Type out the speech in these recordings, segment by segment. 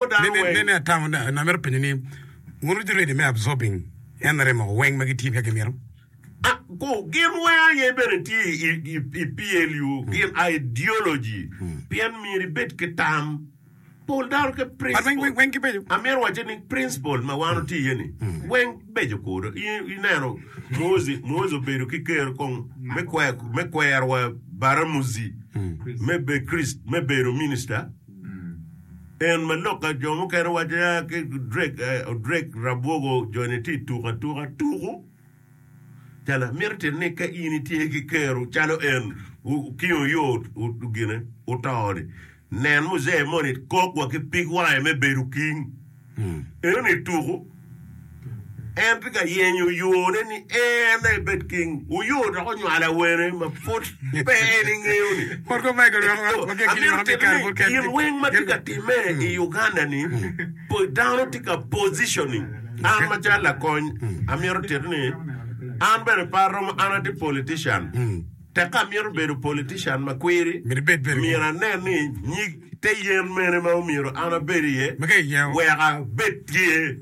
Nen ni atamo ni amito penyo ni, wun wutye ready me absorbing NRM o weng ma gitye ka gimito? Gin weng aye bene tye i PLU, gin ideology pien myero ibed ki tam. Pol dano ki principle, amito wacce ni principle ma wan watye iye ni weng beco kodo. Ineno Muhozi, Muhozi obedo ki ker kong me kwerwa Baramuzi me bedo minister. En ma lok ka jo mukene waco ya ki Drake, eh, Drake rabwogo joni tye tuko atuka, tuko calo mito tito ni ka in itye ki kero calo en wu- kingo yo u- u- gine utoni nen muzee moni kok wa ki pig wange me bedo king Enoni tuku en tye ka yenyo yone ni en aye bed king. Wuyo dok onywalo awene ma pud pe en ingeyoni. Amito tito ni gin weng ma tye ka time i Uganda ni dano tye ka positioning. An macalo lakony amito tito ni an bene pe aromo an atye politician. Tek ka amito bedo politician ma kwiri, myero anen ni nyig te yen mene ma omyero an abed iye wek abed tye?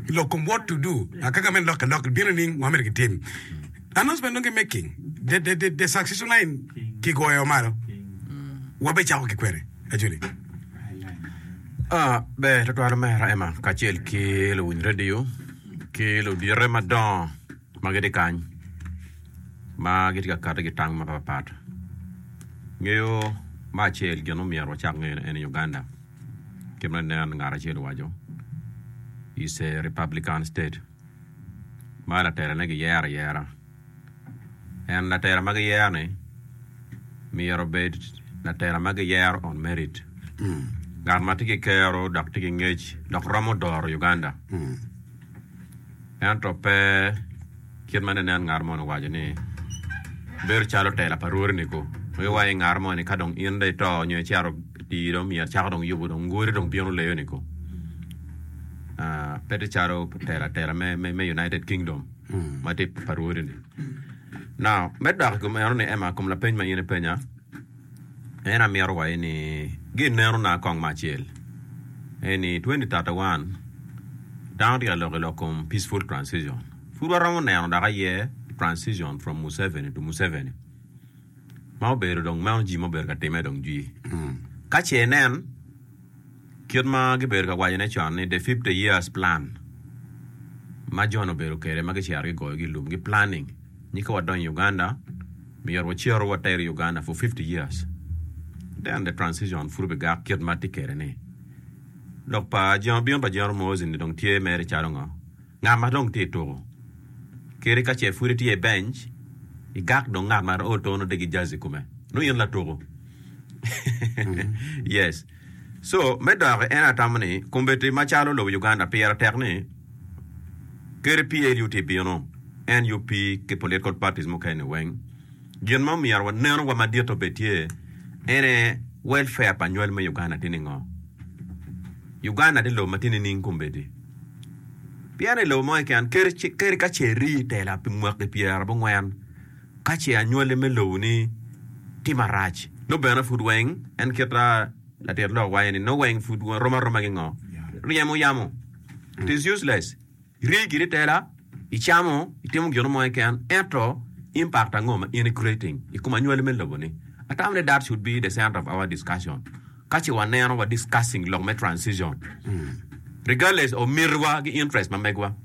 I lok kom What to Do, Akaka me Lok ki Lok Bino Nining ma Myero Gitim? Announcement Nonge Making the Succession Line Kigoyo Malo, Wabicako ki Kwene? Actually, Ah, ber tutwal omera Emma kacel ki luwiny redio ki ludite madongo. ma gitye kany ma gitye ka kati ki tang mapat pat ngeyo me acel gin ma omyero wacak ngeyone en aye Uganda kit ma nen ngat acel owaco is a Republican state ma laterane giyero ayera en latera ma giyero ni myero obed latera ma giyero on merit ngat ma tye ki kero dok tye ki ngec dok romo doro Uganda ento pe kit ma nenen ngat moni owaco ni bedo calo tela pa rwodi-niku. Ma iwaco ni ngat moni ka dong in dong ito nyo icito tii dong myero cako dong yubo dong ngodi dong bino leyo-niku pe tye calo tela tela me United Kingdom ma tye pa rwodi-ni. Now me dok i kom enoni Emma i kom lapeny ma in ipenya En amito waye ni gin neno na kong ma acel en ni 2031 dano tye ka lok ilok kom peaceful transition pud waromo neno dok aye transition from Museveni to Museveni ma obedo dong meno jii ma obedo ka time dong jii ka ce nen Kit ma gibedo ka wacone con ni The Fifty Years Plan ma John obedo kwede ma gicito gigoyogi i lum-gi, planning, nyi ka wadonyo i Uganda, myero wacito wateri i Uganda for fifty years, then the transition pud obigak kit ma tye kwede-ni. Lok pa Jingo Bino pa Jingo Muhoozi-ni dong tye mere calo ngo? Ngat ma dong tye i tuko kadi ka ce pud itye i benc, igak dong ngat ma o tono degi jazi kome. Nongo in latuko. yes. So, me doki en atamo ni kombeti macalo lobo Uganda pire tek ni kadi PLU tye bino, nup ki political parties mukene-ni weng, gin ma myero wanenu wa madit obed tye en aye welfare pa nywal me Uganda tye ningo? Uganda tye lobo ma tye nining kombedi? Pien i lobo mo keken, kadi ka ce iri i tela pi mwaki pyera abongwen, ka ce anywali me lobo-ni tye marac, nongo bene pud weng, en kit ma latit lok waco ni, nongo weng pud rom aroma ki ngo? Ryemo yamo. It is useless. Iri giri i tela, icamo, itimo gino mo keken, ento impact ango ma in i creating i kom anywali me lobo-ni? I tam ni that should be the center of our discussion. Kace wa neno wa discussing lok me transition regardless of miti wa ki interest ma megwa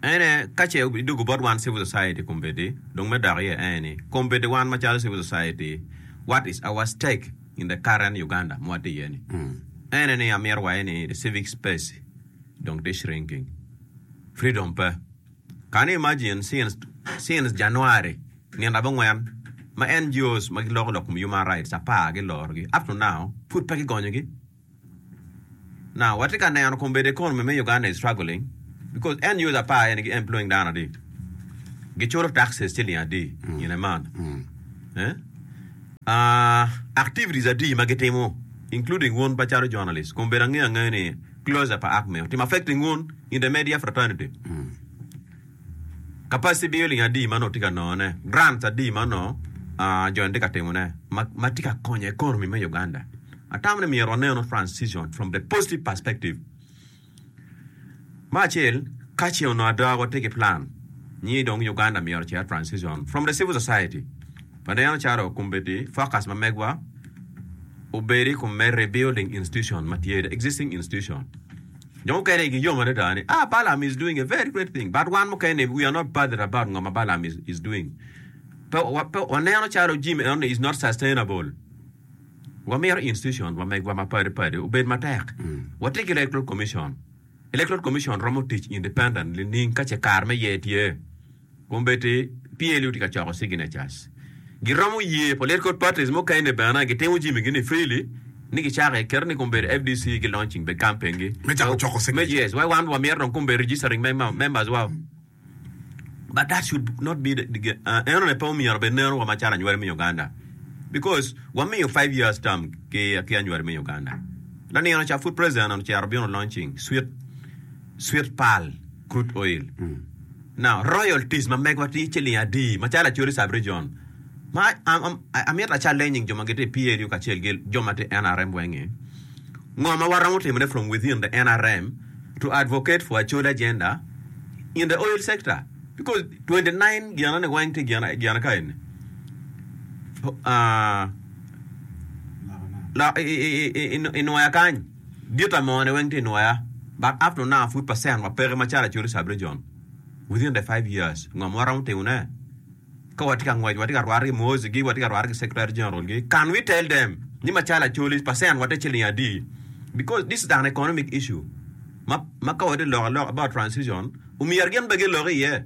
ene kace idugu bot wan civil society kombeddi dong me dok iye ene ni kombeddi wan macalo civil society what is our stake in the current Uganda ma watye iye ni ene ni amito wa ene ni the civic space dong tye shrinking freedom pe. Kani imagine since since January nino abongwen ma NGOs ma giloko lok kom human rights apar giloro gi up to now pud pe gigonyo gi now watye ka neno kong bed economy me Uganda is struggling because NGOs apar eni gi employing dano adi giculo taxes ciling adi in a month activities adi ma gitimo including wun macalo journalist kong bed ange ange ni Closure pa arc meo tim affecting un intermedia fraternity capacity building adi ma nongo tye ka nongo ne grants adi ma nongo joni tye ka timo ne ma tye ka konyo economy me Uganda atamo ni myero waneno transition from the positive perspective me acel kace onongo ada watye ki plan nyi dong Uganda myero ocer transition from the civil society Waneno calo kombeddi focus ma megwa obed i kom me rebuilding institution ma tye, the existing institution. Jo mukene igi yom adada ni, ah, Balaam is doing a very great thing. But wan mukene-ni, we are not bothered about ngo ma Balaam is, is doing. Pe, wa, pe waneno calo Jim eno-ni is not sustainable. Wamito institution wa megwa ma padi padi obed matek. Watye ki Electoral Commission. Electoral Commission romo tic independently nining ka ce kare me ye tye. Kombeddi PLU tye ka coko signatures. Giromo yee political parties mukene bene gitimo jimigi ni freely ni gicako i kite ni kombeddi FDC gi launching be campaign gi. Me cako coko signatures. Yes, why wan wa myero dong kombeddi registering members wa. But that should not be the eno ne pe omyero be neno wa macalo anywali me Uganda because wa miyo five years term ki anywali me Uganda. Lanino ca pud president ocito bino launching sweet. Sweet Pearl Crude Oil. Now, Royal Teas ma megwa tye ciling adi macalo Acholi Sub Region ma amito a challenging jo ma gitye i PLU kacel ki jo ma tye i nrm weng ni ngo ma waromo timone from within the nrm to advocate for Acholi agenda in the oil sector because twenty nine gina ni weng tye gina ka eni ah lok inwoya kany. Gitta mone weng tye nwoya but up to now pud percent wa peke macalo Acholi sub region within the five years ngo ma waromo timo ne ka watye ka ngwec watye ka rwate ki Muhozi gi watye ka rwate ki secretary general gi can we tell them ni macalo Acholi percent wa tye ciling adi because this is an economic issue ma ma ka watye lok alok about transition omyero gin bene gilok iye.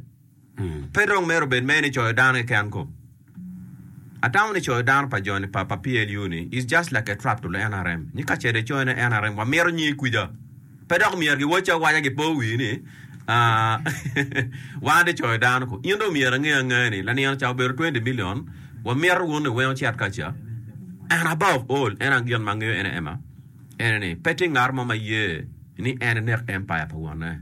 Pe dong myero obed mere ni coyo dano keken ko. Atamo ni coyo dano pa joni pa pa PLU ni is just like a trap to the nrm. Nyi kacel i coyo ne nrm wa mito nyi kwica. Pe dok myero gi wacce awaca gi po wii ni aah wan de coyo dano ko. In dong myero ange angea ni lanino ca obedo twenty million wa mito wun ni weng ocit kaca and above all en ang gin ma angeyo ene ema ene ni pe tye ngat mo ma ye ni en enek empire pa wonne.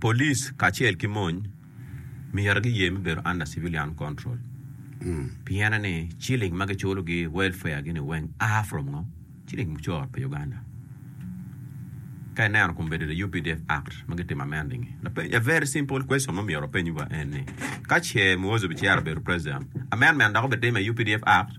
Police kacel ki mony myero giye me bedo under civilian control piene ni ciling ma giculo gi welfare gi ni weng a from ngo? Ciling mucoro pi Uganda. Ka ineno kun bedo the updf act ma gitimo amending gi. Lapeny a very simple question ma myero wapeny wa en ni ka ce Muhozi obicero obedo president amendment dok obitime i updf act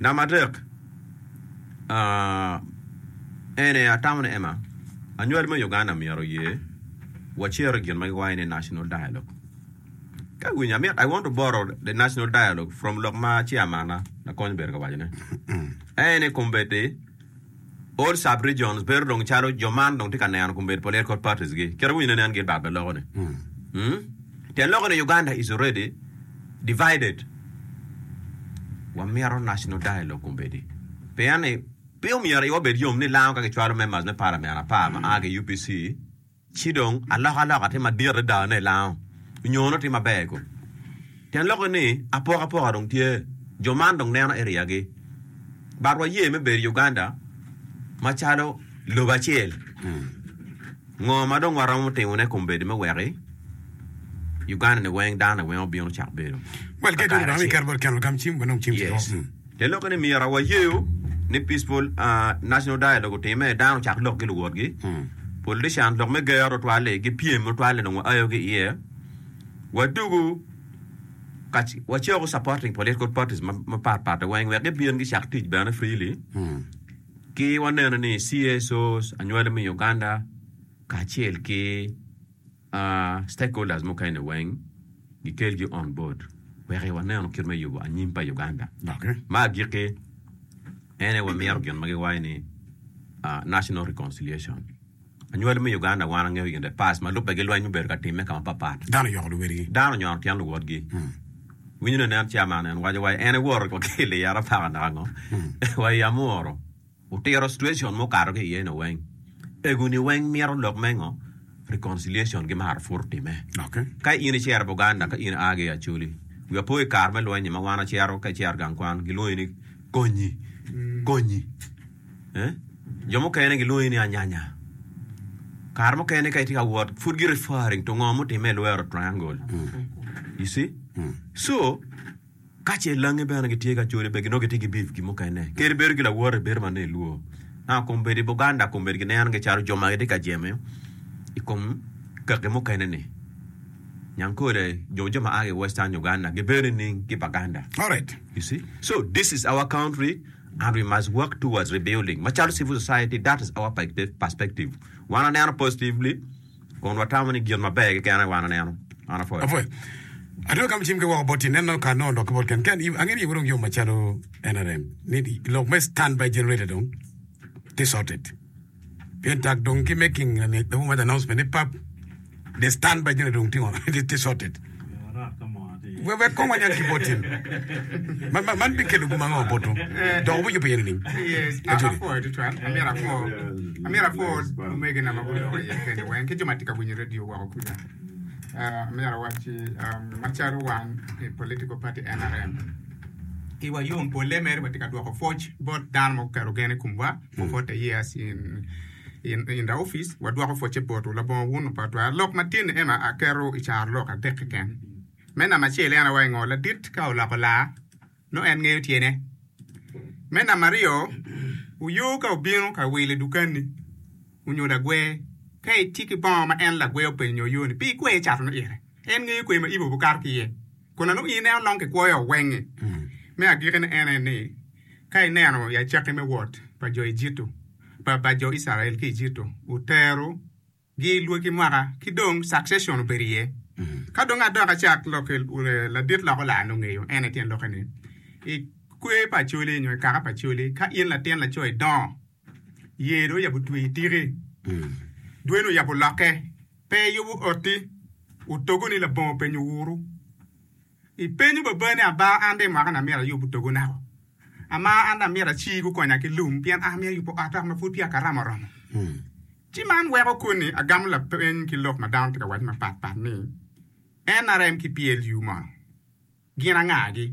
Namba adek, ene atamo ni Emma, anywali me Uganda myero oye wacer i gin ma giwaco ni National Dialogue. Ka iwinyo amyero, I want to borrow the National Dialogue from lok ma Chairman-na, Lakony Berge owaco ne. Ene kombeddi, All sub-regions bedo dong calo jo man dong tye ka neno kombeddi political parties gi kit winyo ne nen gin bad loko ni. Hmm. Te loko ni Uganda is already divided. Wa mito national dialogue kombeddi. Pien ni pe omyero iwa bed yom ni lango ka ki chwalo members me parliament apar ma aa ki UPC, Ci dong, alokaloka tye madit adada ne lango nyo nongo tye maber kong. Tyen lokke ni, apokapoka dong tye, jo man dong neno area gi. But wa ye me bedo i Uganda macalo lobo acel. Ngo ma dong waromo timo ne kom bedo me weki Uganda ni weng dano ni weng obino cak bedo. Well, kit dong rwami iketo bot keno lagam cim, wan dong cim tye. Te lokke ni myero wayeyo ni Peaceful National Dialogue otimme, dano ocak lok ki luwotgi, politicians lok me ger tutwal-li, gipyem tutwal ni dong waayo ki iye, wadugu ka wacako supporting political parties mapat pat weng wek gibin gicak tic bene freely, ki waneno ni CSOs, anywali me Uganda, kacel ki. Stakeholders mukene weng gikelgi on board wek waneno kit me yubo anyim pa Uganda. Ma agikki en aye wamito gin ma giwaco ni National Reconciliation. Anywali me Uganda wan wangeyo in the past ma lubbe gilweny mubedo ka timme ka mapatpat. Dano oyoko luwotgi. Dano onyono tyen luwotgi. Winyo ni nen chairman en waco wa en aye woro wa ki i Liyara paka naka ngo wa i Amuru. Otiro situation ma okato ki iye no weng. Egu ni weng mito lok me ngo? Reconciliation gi maro pwur time. Ka in icero Buganda ka in agi Acholi, wi apo i kar me lweny ni ma wan wacero ka icero gang kwan gilwongi ni Konyi, Konyi. Jo mukene gilwongi ni Anyanya. Kare mukene ka itye ka wot pwud gi referring to ngo mutime i lwero triangle. You see? So. Ka ce langi bene gitye ka code bene nongo gitye ki beef gin mukene kadi bedo ki lawote bedo ma nongo ilwor ma kombeddi Buganda kombeddi gineno gi calo jo ma gitye ka jemo i kom kaki mukene ni Nyankole nyo jo ma a ki western Uganda gibedo nining ki Baganda alright you see so this is our country and we must work towards rebuilding macalo civil society that is our perspective wan waneno positively Kun watamo ni gin maber keken aye wan aneno. Man apwoyo. Apwoyo. Atwero gamo cim ki woko bot tineno ka nongo lok ki bot ken ken. Angeyo ni iye wudong yom macalo NRM. Ni lok me stand by generator dong tye sorted. Pien tak dong ki making the who made announcement ni pap the stand by generator dong tye sorted. Wek kong wanyal ki bot tim man, man bikelo gum ango boto, dok wubijubo iye nining? Aco ni. Amyero apwo omegina ma guloko iye kene weng ki jo ma tye ka winyo redio woko kuca. Amyero awacci macalo wan i political party NRM, iwa yom polle mere watye ka dwoko pwoc bot dano ma guketo gen i komwa for forty years in I nda opic, wadwoko pwocce botwu. Labongo wun opa twar. Lok matin ni Emma aketo i caro lok adek keken. Me namba acel, en awaco ngo, ladit ka oloko laa, nongo en ngeyo tyene. Me namba aryo, uyo ka obino ka wil i dukanni, onyo lagwer, ka itye ki bongo ma en lagwer openyo nyo oyo-ni, pi ikwer cato ne ite? En ngeyo kwer ma ibo bukato ki iye. Kun anongo in en onongo kikwoyo wenge. Me agikine en aye ni, Ka ineno ya cakki me wot pa jo Ejitto, pa, pa jo Icrael ki Ejitto, otero gi i lwaki mwaka, ki dong succession obedo iye. Ka dong adok acak lok ki ladit loko laa nongo ngeyo en aye tyen lokke ni, I kwer pa acoli nyo i kaka pa acoli, ka in latin laco idongo, Yer dong oyabo twer tike, dwene oyabo lokke, pe eyubo otti, otogo ni labongo openyo wuru. Ipenyo baba ni aba an dong imaka ni amyero ayub otogo nako? Ama an dong amyero aci gukonya ki lum pien an amyero ayubo ot naka ma pud peya karama oromo. Ci man weko koni agamo lapeny ki lok ma dano tye ka waco mapatpat ni, NRM ki PLU mono gin angagi?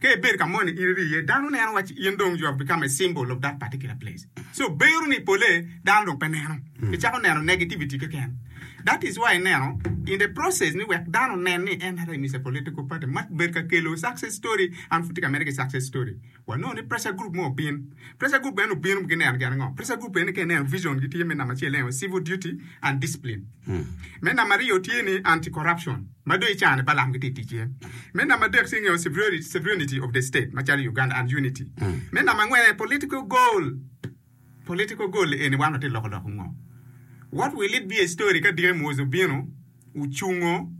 Ka ibedo ka moni in iri iye, dano neno waci in dong you have become a symbol of that particular place. So bero ni pole dano dong pe neno, icako neno negativity keken. That is why ineno in the process ni wek dano onen ni NRM is a political party, ma bed ka kelo success story, an pud tye ka mede ki success story. Wanongo ni pressure group mo obin. Pressure group bene obino gineno gin ango? Pressure group bene ka ineno vision gi tye me namba acel en aye civil duty and discipline. Me namba aryo tye ni anti-corruption. Ma dong i car-ni Balaam gitye i tic iye. Me namba adek tye ngeyo sovereignty of the state macalo i Uganda and unity. Me namba angwen aye political goal. Political goal eni wan watye loko dok ngo? What will it be a story ka dike Muozi obino ocungo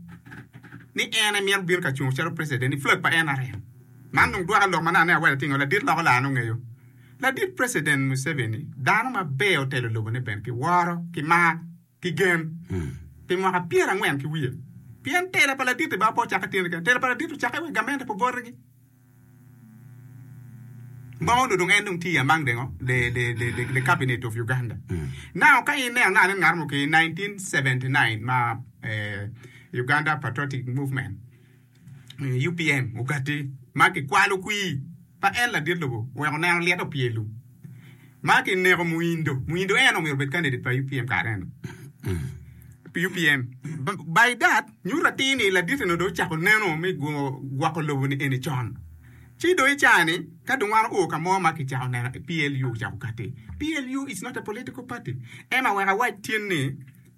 ni en aye mito bino ka cungo calo president i flag pa nrm? Man dong dwoka lok ma nano ni awelo tye ngeyo ladit loko laa nongo ngeyo. Ladit president Museveni dano maber otelo lobone bene ki woro ki mar. ki gen pi mwaka pyera angwen ki wiye, pien tela pa laditi baa pe ocakke tyene kene, tela pa laditi ocakke wek gamente pe obotigi. Ma onongo dong en dong tye i among the ngo, the, the, the, the, the cabinet of Uganda. Now, ka ineno ngat en ngat mo ki 1979 ma eh, Uganda Patriotic Movement, UPM ogati ma kikwalo kwir pa en ladit lobo weko neno lyet opye ilum ma kineko Muindo. Muindo en omyero obed candidate pa UPM kare eno. UPM by that nyuto atir ni ladit eno dong ocako neno me gwoko lobo ni eni con. Ci dong i caa ni ka dong wan oo ka mo ma kicako neno PLU ocako kati. PLU is not a political party. Ema wek awac tin ni.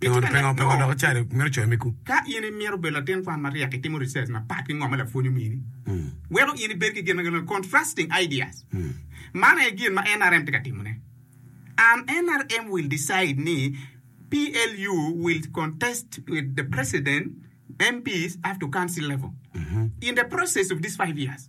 Pingo dok ical i mito coyo megu? Ka in imito bedo latin kwan maryek, itimo research mapat ki ngo ma lapwony omini weko in ibed ki gin ma kilwongo ni contrasting ideas. Man aye gin ma NRM tye ka timone. An NRM will decide ni PLU will contest with the president, MPs up to council level in the process of this five years.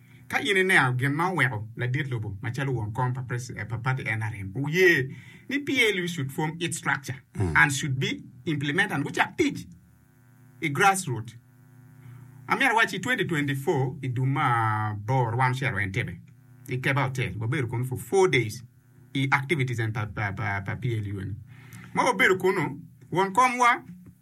Ka in ineno gin ma oweko ladit lobo macalo won kom pa pati nrm oye ni PLU should form its structure and should be implemented and gucak tic i grassroot, amyero awaci i twenty twenty four i dwe ma aboro wan ocito wa Entebbe i Keba Hotel wabedo kunu for four days i activities eni pa PLU eni ma wabedo kunu won kom wa.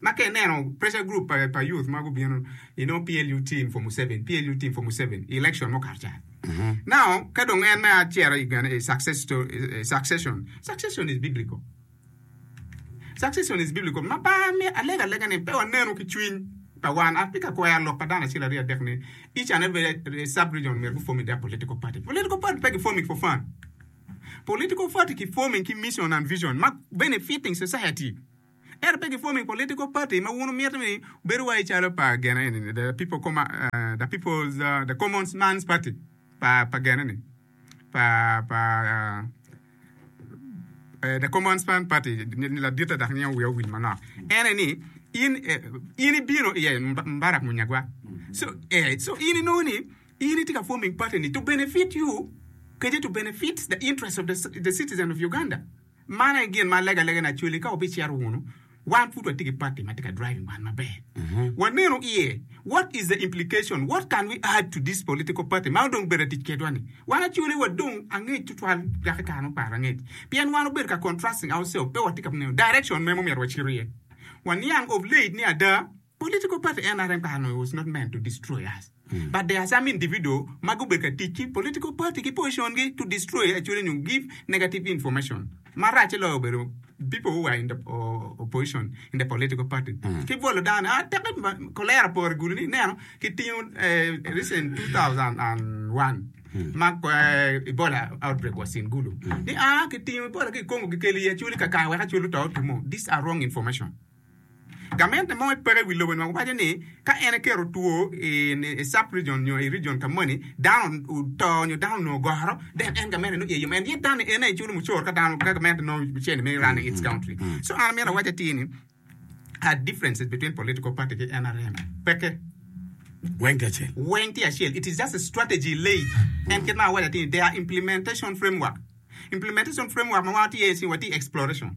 Ma ka ineno pressure group pa pa youth ma gubino you know PLU team for Museveni, PLU team for Museveni i election ma okato ca. Now ka dong en me aciro i gene i success sto- eh, succession, succession is biblical. Succession is biblical. Ma ba me alega lega ni pe wanenu ki cwiny pa wan. Atye ka kwero lok pa dano acel aryo adek ni each and every eh, sub region myero gu forming their political party. Political party pe ki forming for fun. Political party ki forming ki mission and vision ma benefiting society. Ento pe gifoming political party ma wun wumito ni bedo wai calo pa gene eni ni the people comma the people's the common man's party pa pa gene ni pa pa the common man's party ni laditte dok miyo wiya owil manok ene ni in in ibino iye Mubarak Munyagwa so eh so in inongo ni in itye ka forming party ni to benefit you kadi to benefit the interest of the citizen of Uganda. Man aye gin ma legalega ni acwali ka wabicito wunu, wan pud watye ki party ma tye ka driving wan maber. Wanenu iye, what is the implication, what can we add to this political party ma dong obedo ka tic kedwa ni. Wan acwali wa dong angec tutwal dok i kare muparo angec pien wan obedo ka contrasting ourselves pe watye ka neno direction mere ma omyero wacito iye. Waniang of late ni ada Political party NRM kara onongo was not meant to destroy us but there are some individual ma gubedo ka tic ki political party ki position gi to destroy actually nyo give negative information ma racce loyo obedo people who are in the opposition in the political party ki bwolo dano ni ah teke kolera pore gulu ni ineno ki tingo recent 2001 ma Ebola outbreak was in gulu ni ah ki tingo Ebola ki Congo ki kelo i actually kakare wek actually oto two mo these are wrong information. Gamente mo i peko i wi lobo ni waco ni ka en eketo two i sub region nyo i region ka moni dano oto nyo dano onongo ogoro then en gamente nongo iye yom and yet dano ni en aye culo mucoro ka dano ka gamente nongo mucene me running its country so an amito awac atir ni are differences between political party ki nrm peke Weng tye acel. weng tye acel it is just a strategy lay en kit ma awaco atir ni they are implementation framework implementation framework ma wan watye iye ni watye exploration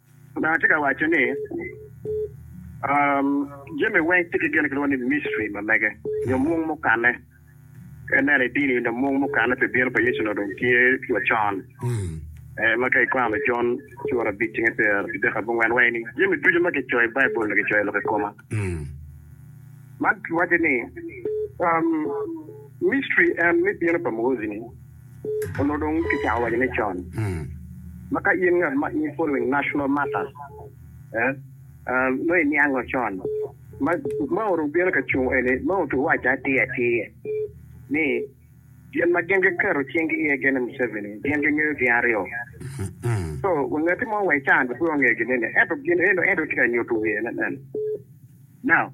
Lubanga tye ka waco ni, Jami weng tye ki gin ma kilwongo ni misteri ma mege, nyo mung mukanne. Ka ineno i dini nyo mung mukanne pi bino pa Yecu-ni dong tye wacon, ma ka ikwano Jon cura abic cinge pyerabidek abongwen waci ni, Jami ducu ma kicoyo i Baibul-li kicoyo lok i koma. Man waco ni misteri en me bino pa Mwozi-ni. Onongo dong kicako waco ni con ma ka in ngat ma in following national matters nongo iniango con ma Mao dong bino ka cung eni, Mao dong owaco atir atir ni gin ma gin giketo cinggi iye gin ni Museveni gin gingeyo gin aryo. So wanget mo wa i can pe ongeyo gin eni ento gin eno en dong tye ka nyuto wiye ne. Now,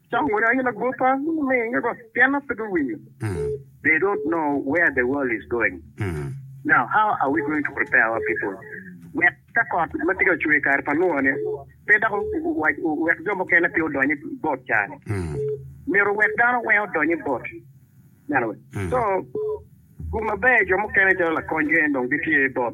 Cok moni aye lagwoppa minge bot pien an pe biwinyo they don't know where the world is going now how are we going to prepare our people wek ka kot ma tye ka cwer i kare pa Nua ni pe dok wek jo mukene pe odony i bot caa ni myero wek dano weng odony i bot so gum maber jo mukene calo lakony gene dong gitye bot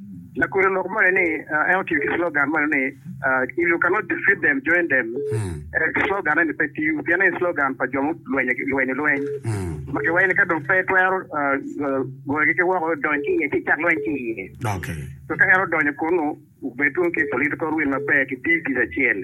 Lakwena oloko moni ni, en otiyo ki slogan moni ni, If you cannot defeat them, join them. Slogan eni pe tiyo pien eni slogan pa jo mulwenyo lweny ma giwaco ni ka dong pe twero goyogi ki woko, dony ki iye ci icak lweny ki iye. Ka en odonyo kunnu, obed dong ki political will maber, kiti tic acel.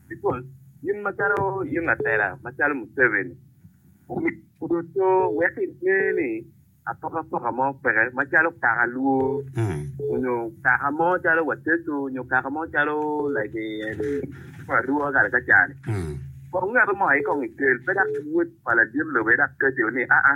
Nikon, in macalo in latela macalo Museveni, omyero kodo to wek inge ni apokapoka mo peke macalo kaka Luo onyo kaka mo calo Wateso onyo kaka mo calo like Luo Arua kare ka cani. Kong ngato mo aye kong ikel pe dok wod pa ladit lobo aye dok kati o ni aa.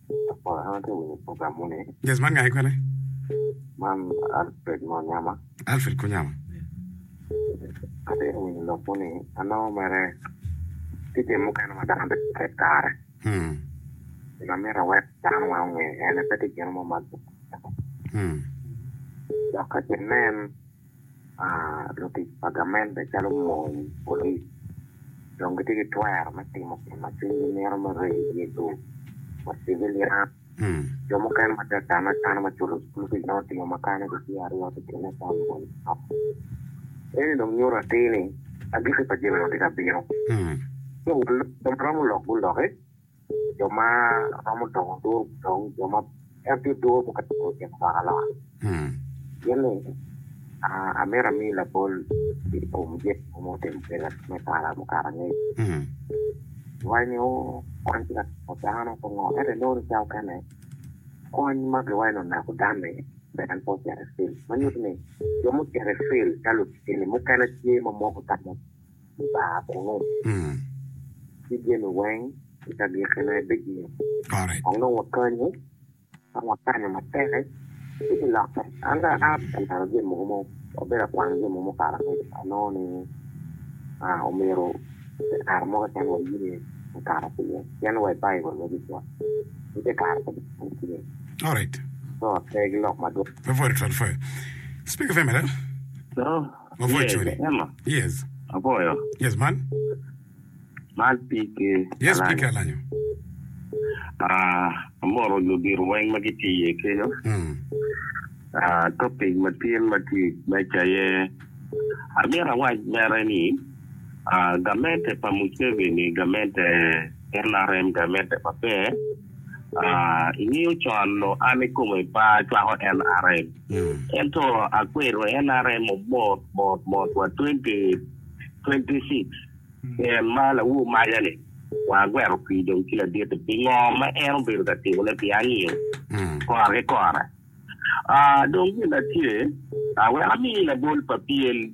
Apol an atye winyo program moni. Yes man gange kwene? Man Alfred mo nyama. Alfred ko nyama. Atye winyo lok moni anongo mere tye jami mukene ma dano bedo tek kare. Hmm. Gin amito awek dano weng onge ene pe tye gin mo ma dok ka ki nen Lutic pa gamente calo mony, polic, dong gitye ki twero me timo gin ma cwinygi mito me rego i dye lum wa civilian. Jo mukene ma tye ka kane akana ma culo cukul kic nongo otingo makane gitye aryo ki tyene ka mony manok. Eni dong nyuto atir ni agikki pa jami-ni tye ka bino. Ci jo ma romo lok guloki. jo ma romo dongo duru dong jo ma en tye duru pe ka duru i kin lwak aloka. Gin ni, amito ami labol i kom jami mogo ma otimo kweda me kare mukato angec. Iwaco ni, Oo, kwan tye ka timo dano pe ngo. Ento inongo ni ca okene, kony ma giwaco ni onako dan-ni pe en pe ocito i cel. Ma nyuto ni, jo mucito i cel calo lutini mukene tye ma moko tamo. Par kunu, ci jami weng i kagikkine bigik. Kong dong wakanyu, ka wakanyu matek, ci bilokke. An ka aa ka neno jami mogo ma abedo ka kwano jami mogo ma okato kwede, anongo ni omyero pi kare mo keken waye ni okato ki iye, pien wa i Baibul me Jeju ni te kare pa Jeju pud tye. Lok pe gilok madwong. Yes, Emma. Aboyo. Man Pike Alanyo. Amoro ludito weng ma gitye iye kenyo. Topic ma tye i meja aye amito awac mere ni gamente pa Muceveni gamente nrm gamente maber. Ingeyo con nongo an ikome pe acwako nrm. Ento akwero NRM mot mot mot wa 2026 pien ma lawu maja ni wa agwero pii dong ci laditi pi ngo ma en obedo ka timo ne pi anio kora ki kora. Aa dong gin atye aa wek ami labol pa pien.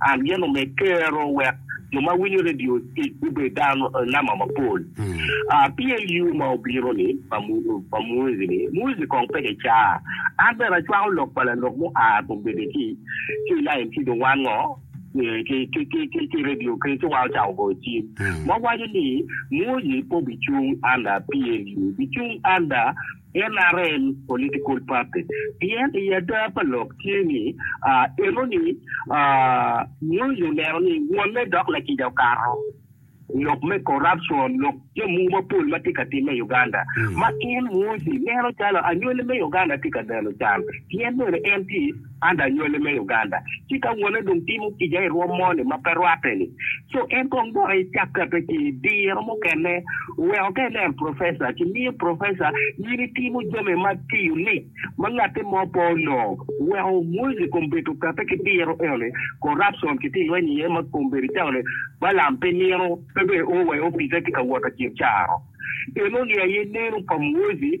ageno me kero wek jo ma winyo redio tic gubed dano namba mapol. PLU ma obino ni pa Muizi ni, Muizi kong peke ca, an bene acwako lok pa lanok mo a kum bedo ki ki lain ki dong wan ngo ki redio kene ci wa ocako goyo cim ma waco ni Muizi pe obicung anda PLU, bicung anda NRM political party pien i ada pa lok tye ni enoni Moi olero ni wonne dok lakica okato lok me corruption lok jamwu mapol ma tye ka timme i Uganda ma in Mwosi neno calo anywali me Uganda tye ka neno can pien bene en tye An dong anywale me Uganda, ci ka wone dong timo kica i rwom mo-ni ma pe rwatte-ni, co en kong dok ecakkatta ci i diro mukene oweko ka ineno professor ci miyo professor in itimo jami ma tiyo lic ma ngatti mo pe onongo. Oweko Muozi kong bedo okatte ki diro eno-ni, corruption ki tye lweny iye ma kong bedo calo-ni Balaam pe nino pe bene o wa i opice tye ka wot acel caro eno-ni aye neno pa Muozi.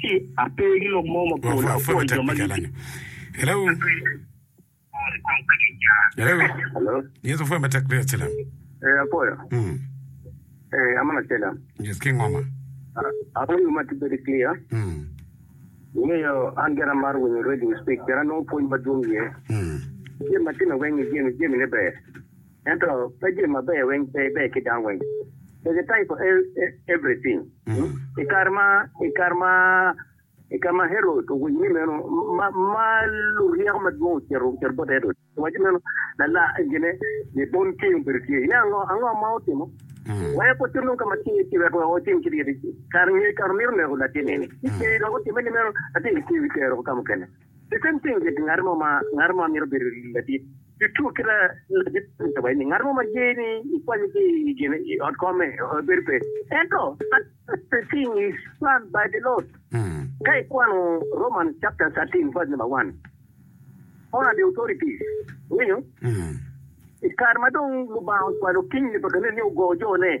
ci ape ki lok mo ma kor dok apwoyo jo ma gitye. Ee, apwoyo. Ee, aman acelem. Apwoyo wi mati bedo clear. Ingeyo an gira amaro winyo radio speak pien anongo pwony madwong iye. Jami ma timme weng ni jami, jamine ber. Ento pe jami maber weng pe ber ki dano weng. There's a time for everything. I kare ma i kare ma i kare ma Herod owinyo ni meno ma ma luryeko madwong ocito ocito bot Herod owaco meno lala gine Libon ceng obedo tye ya ngo ango ma otimo weko ocit nongo ka ma tye iye ci weko weko otim kit yadi kare nge kare omito neko latin eni ci ceng dok otime ni meno latin tye iwi tero ka mukene I kin pinye di ngat mo ma ngat mo mito bedo ladit tuttu ki ladit me cobo eni ngat mo ma ye ni ikwanye ki i gin i ot kome bedo pe. Ento but but the thing is plan by the Lord. Ka ikwano Romans chapter thirteen verse number one, honor the authorities, iwinyo? I kare ma dong Lubanga ocwalo kinygi pa ka nene ni ogo jo ne,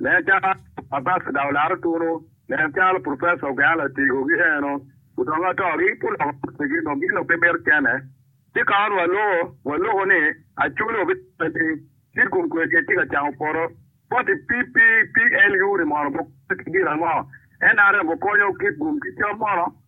Me acakka, Abacada olaro tunu nen calo Professor Ogeana otego gi eno odongo ato gi ki loko kotigi dong gin dong pe mito cene. Ci kawan wa loko wa loko ni Acholi obino lwel ni Cid kun kwer kec tye ka camo poto. Koti PP PLU ni mono bo konyo ki gin ango? NRM okonyo kit gum ki cam mono?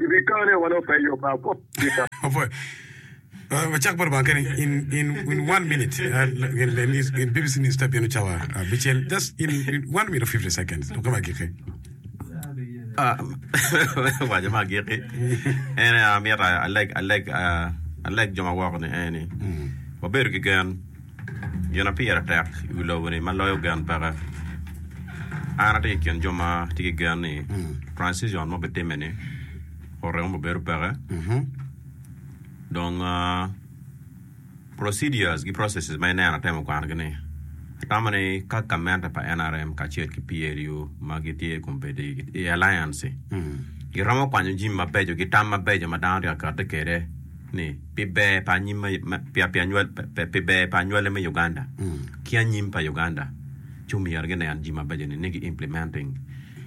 Ibikone wa lok eyo pa kop tika. Wacak bot Lubanga kene in in in one minute. Ah, l- gin le news in BBC news type yenu cawa ah, bicel just in in one minute or 50 seconds. Duke ma giki. Ah, waco ma agikki en aye amito aleg aleg ah, aleg jo ma woko ni en ni wabedo ki gen Gin ma pire tek i wi lobo-ni ma loyo gen peke. An atye i kin jo ma tye ki gen ni transition ma obitimme-ni orem mogo bedo peke. Dong ah, procedures ki processes ma ineno atemo kwanogi-ni, atamo ni ka gamente pa NRM kacel ki PLU ma gitye i kom bedo i i alliance-ci, giromo kwanyo jami mabeco ki tam mabeco ma dano tye ka kati kwede ni, pi ber pa anyim ma pi pi anywal pi ber pa anywale me Uganda ki anyim pa Uganda ci omyero ginen jami mabeco ni ni gi implementing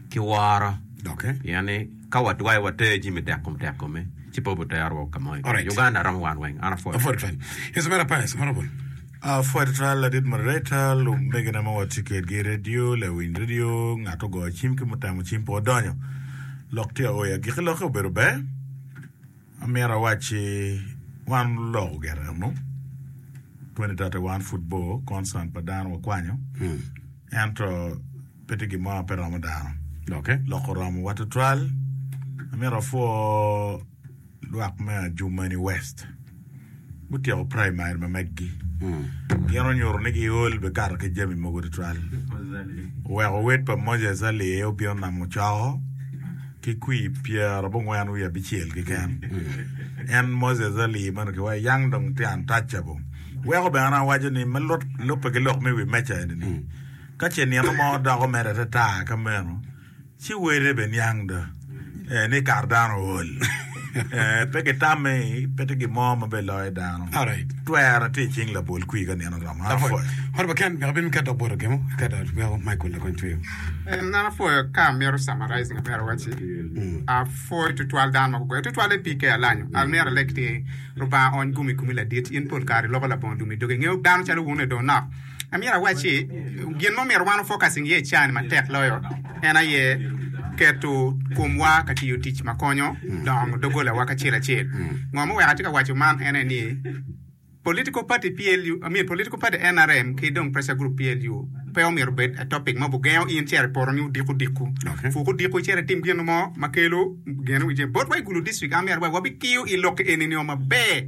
ki woro Doke. pien ni ka watwayo water jami tek kom tek kome ci pe obitero wa ka mo i Alright. Uganda romo wan weng an apwoyo Aford Twal. Yes, Mera Pius, Honorable. Ah, Fwed Twal, Adit Moderator, lumegina ma watye kwedgi i redio, lawiny redio, ngat ogoyo cim ki mutemo cim pe odonyo. Lok tye aoya. Giki lokke obedo ber. Amyero awac ci wan oloko gire eno 2031 pud bor concern pa dano wakwanyo ento pe tye gin mo ma pe romo dano Okay. loko romowa tutwal amyero apwo lwak me Adjumani West gutyeko praimari ma meggi gin onyuto ni giol bene kato ki jami mogo tutwal. Oweko owed pa Moses Ali aye obino namo coko ki kwir pyera abongwen wiye abicel keken. En Moses Ali ma onongo kiwaco Young Dong Tian Touchable. Weko bene an awaco ni me lubbe ki lok me i wi meja eni ni ka ce nino mo doko mere ata ata ka meno Ci wele bene niang do eh, ni kare dano ool eh, pe gitamme ni pe tye gin mo ma beloyo dano. Alright. Twere tye i cing labol kwir ka nino oromo. An Apwoyo. Apwoyo. Hot ba Ken, wek abin ka dok boto gemo, ka dok weko Michael lakony tweyo. An apwoyo ka amito summarize ngat mere awac-ci. Apwoyo tutwal dano ma gugoyo tutwal en pii ke alanyo. Amyero alek ni Lubanga ony gumi kumi ladit. In pol kare iloko labongo lum i dogi. Ingeyo dano calo wun-ni dong nok. Amyero awac ni, gin ma omyero wan ofocusing iye i caani matek loyo en aye keto komwa ka tiyo tic ma konyo dongo doggolawa kacel acel. Ngo ma oweko atye ka waco man en aye ni, political party PLU, I mean political party NRM ki dong pressure group PLU pe omyero obed a topic ma obugengo in cito i poto ni odiku diku. Okay. Fuku diku icito itim gin mo ma kelo gen wi jami. Bot wa i Gulu district, amyero wa wabitiyo i lok eni nio maber.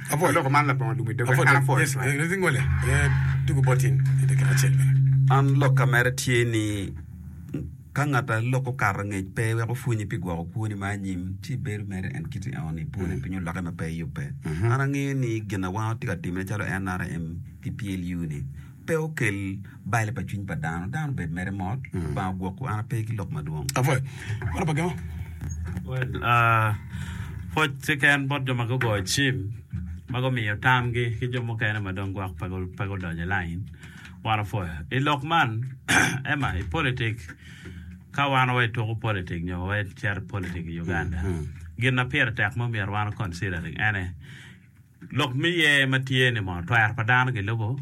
Apwony. Aloko man labongo lum i doga eka an apwoyo cwak. Man lok ka mere tye ni ka ngat a lok okato ngec pe weko pwonyi pi gwoko kwoni ma anyim ci bedo mere en kiti eno ni pwone piny oloke ma pe yubbe. An angeyo ni gin a wango tye ka time calo NRM ki PLU ni. pe okel bale pa cwiny pa dano, dano obed mere mot, Lubanga ogwokwu an ape ki lok madwong. Apwoyo. Meno pa gemo. Well, ah, pwoc keken bot jo ma gugoyo cim ma gumiyo tamgi ki jo mukene ma dong gwok pe gu- pe gudonyo i lain. Wan opwoyo. I lok man, ema, i politik, ka wan wa ituko politik nyo wa icito i politik i Uganda, gin ma pire tek ma omyero wan o considering ene, Lok me ye ma tye ni mono twero pa dano gilubo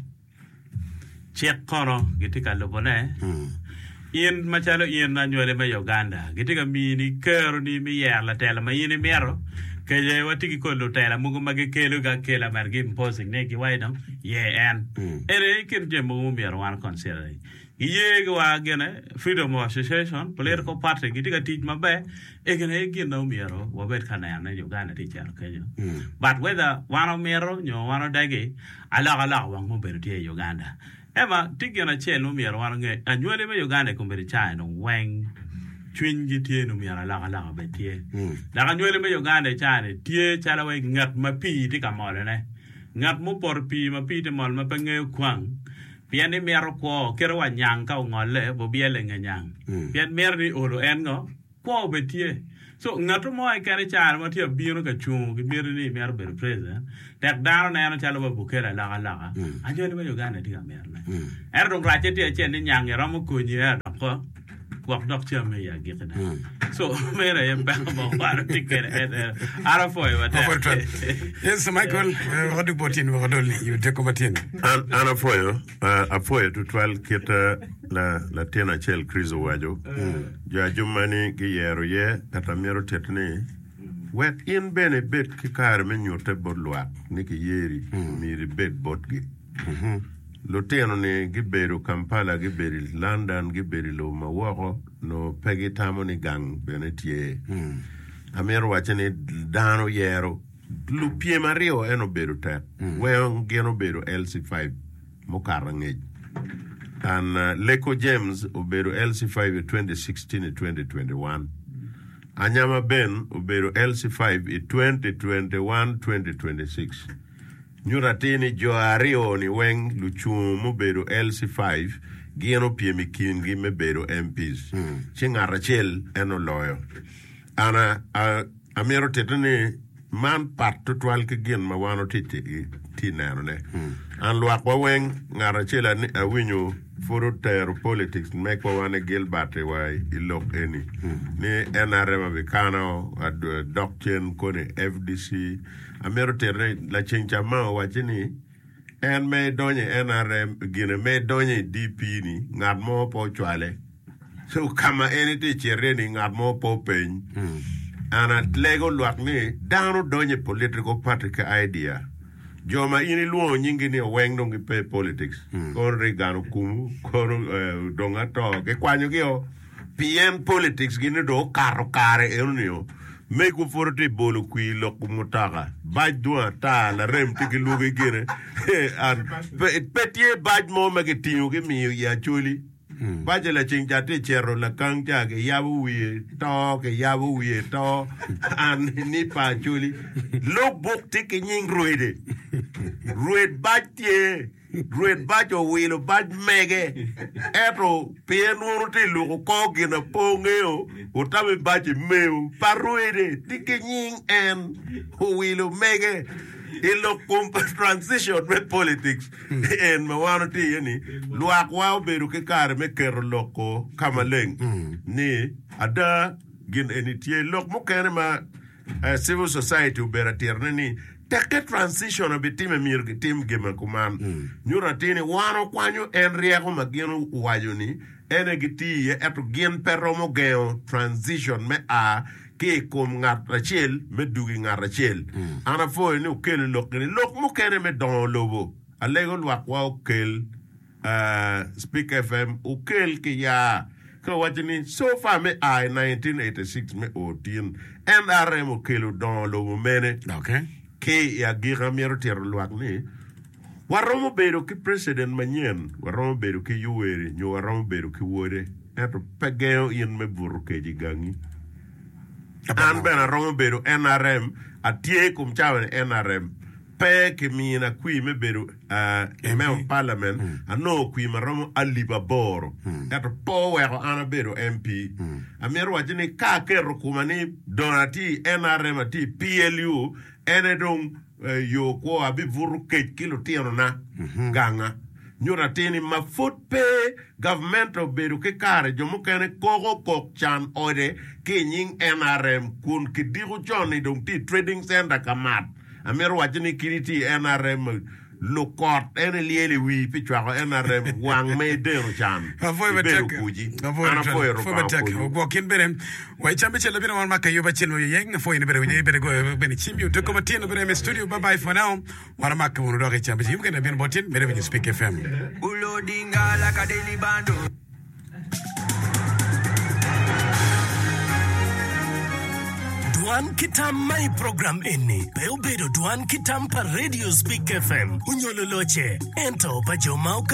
cik kono gitye ka lubone? In macalo in anywali me Uganda gitye ka mini keroni me yero latela ma in imito? Kece watye ki kodi lutela mogo ma gikelo ga kela mere gi imposing ne gi waci dong ye en. Ene i kin jami mogo ma omyero wan considering. Gi ye gi wa gene freedom of association, political party gi tye ka tic ma ber egin aye gin na omyero wa bed ka neno ni Uganda tye cito kenyo but whether wan omito nyo wan odegi alok alok wang ma obedo tye i Uganda ema tye gin acel ma omyero wan onge anywali me Uganda i kombedi caa eno weng cwiny gi tye ni omyero alok alok obed tye dok anywali me Uganda i caa ni tye calo wai nget ma pii tye ka molo ne nget ma opoto pii ma pii tye mol ma pe ngeyo kwang. Pien ni mito kwo kelo wa nyang ka ongolle bo byele nge nyang. Pien mito ni olo en ngo? Kwo obed tye. So ngato mo eken i caro ma tye abino ka cungo ki miti ni mito bedo president tek dano neno calo wa bukele alok aloka anyoli ma Uganda tye ka mito ne. Ento dong racce tye acel ni nyang i romo konyi ea dok ko. gwok dok cam me i agikina. Co meno aye peko ma wano tye kwede en en. An apwoyo matek. Apwoyo twal. Yes, Michael, eh, waka duk bot in waka dol i wi teko matyen. An, an apwoyo, ah, apwoyo tutwal kit ah, la, latin acel Chris owaco, jo ajumani giyero iye kata myero otit ni, Wek in bene ibed ki kare me nyutte bot lwak ni kiyeri, myero ibed botgi. Lutino-ni gibedo Kampala, gibedo i London, gibedo i lobo ma woko, nongo pe gitamo ni gang bene tye. Amito wacce ni dano yero lupyem aryo ento obedo tek. Weng gin obedo LC5 mukato angec. An Leko James obedo LC5 i 2016 i 2021. Anyama Ben obedo LC5 i 2021, 2026. Nyuto atir ni jo aryo-ni weng lucung mubedo LC five gin opyem i kingi me bedo MPs, ci ngat acel en oloyo. An a, a, amito titte ni man pat tutwal ki gin ma wan wati ti, ti nenone. An lwakwa weng, ngat acel ani, awinyo pud otero politics me kwowa ni Gilbert i wa i lok eni, ni NRM abikano, ad- dok cen koni FDC, Amito titine, laceng ca ma owacci ni, en ma idonyo i NRM, gine ma idonyo i DP ni, ngat mo pe ocwale. So, ka ma en itye cito iye ni, ngat mo pe openy. And alego lwak ni, dano donyo i political party ki idea. Jo ma in ilwongo nyingi ni oweng dong gipe i politics. Kono Reagan okumu, kono eh, dong ato, gikwanyogi o. Pien politics gi ni dong okato kare eno nio, megwa pwod tye bolo kwir loko mutaka, bac dong ata, larem tye ki lwogi gine, pe tye bac mo ma ki tingo ki miyo i Acholi, bac laceng ca tye cito lakang ca ki yabo wiye to ki yabo wiye to, an ni pa Acholi, lok buk tye ki nying rwede, rwed bac tye. Great bac owilo bac mege eto pi en nwono tye luko kor gin a pe ongeyo otami bac i meyo pa rwede ti ki nying en owilo mege i lok kom pa transition me politics en ma wan watye iye ni lwak wa obedo ki kare me keto lok ko ka maleng ni ada gin eni tye lok mukene ma Civil Society obedo atirane ni tekke transition obitime myero gitim gin ma kuman. Nyuto atir ni wan okwanyo en ryeko ma gin owaco ni en aye giti iye ento gin pe romo gengo transition me a ki i kom ngat acel me dug i ngat acel. An apwoyo ni okelo lok eni lok mukene me dongo lobo. Alego lwakwa okel. Speak FM okel ki ya ka waco ni so far me a i 1986 me o tin NRM okelo dongo lobo mene ki i agika myero tito lwak ni waromo bedo ki president manyen waromo bedo ki Yoweri nyo waromo bedo ki wode ento pe gengo in me buto keci gangi an bene aromo bedo NRM atye i kom cawa ni NRM Pe kimina kwir me bedo i Memo pa Palament. Anongo kwir ma romo alip aboro, ento pe oweko an abedo MP. Amito wacci ni ka aketo koma ni dong atye i NRM, atye i PLU, ene dong yo kwo, abibuto kec ki lutinona ganga. Nyuto atir ni ma pud pe gavment obedo ki kare, jo mukene koko kok can ode ki i nying NRM kun kidiko con ni dong tye i Trading Center ka mat. Amito waco ni kit iti i nrm lukot en ilyel i wii pi cwako nrm wang me ideno can Apwoyo ibedo matek. kuci. Apwoyo An twal. apwoyo Apwoyo Lubanga matek. okonyi. Ogwok in bene. Wa i cam me cel labino wan ma Kayuba Cil Oyeyeng. Apwoyo in bene winyo in bene goyo bene cimbi odoko matin obino eme studio. Bye bye for now. Wan omake wunu dok i cam me cel. Ki mukene labino bot in medo winyo Spik FM. Ulo dingala ka daily bundle. Dwan ki tam ma i program eni pe obedo dwan ki tam pa Radio Speak FM onyo luloce, ento pa jo ma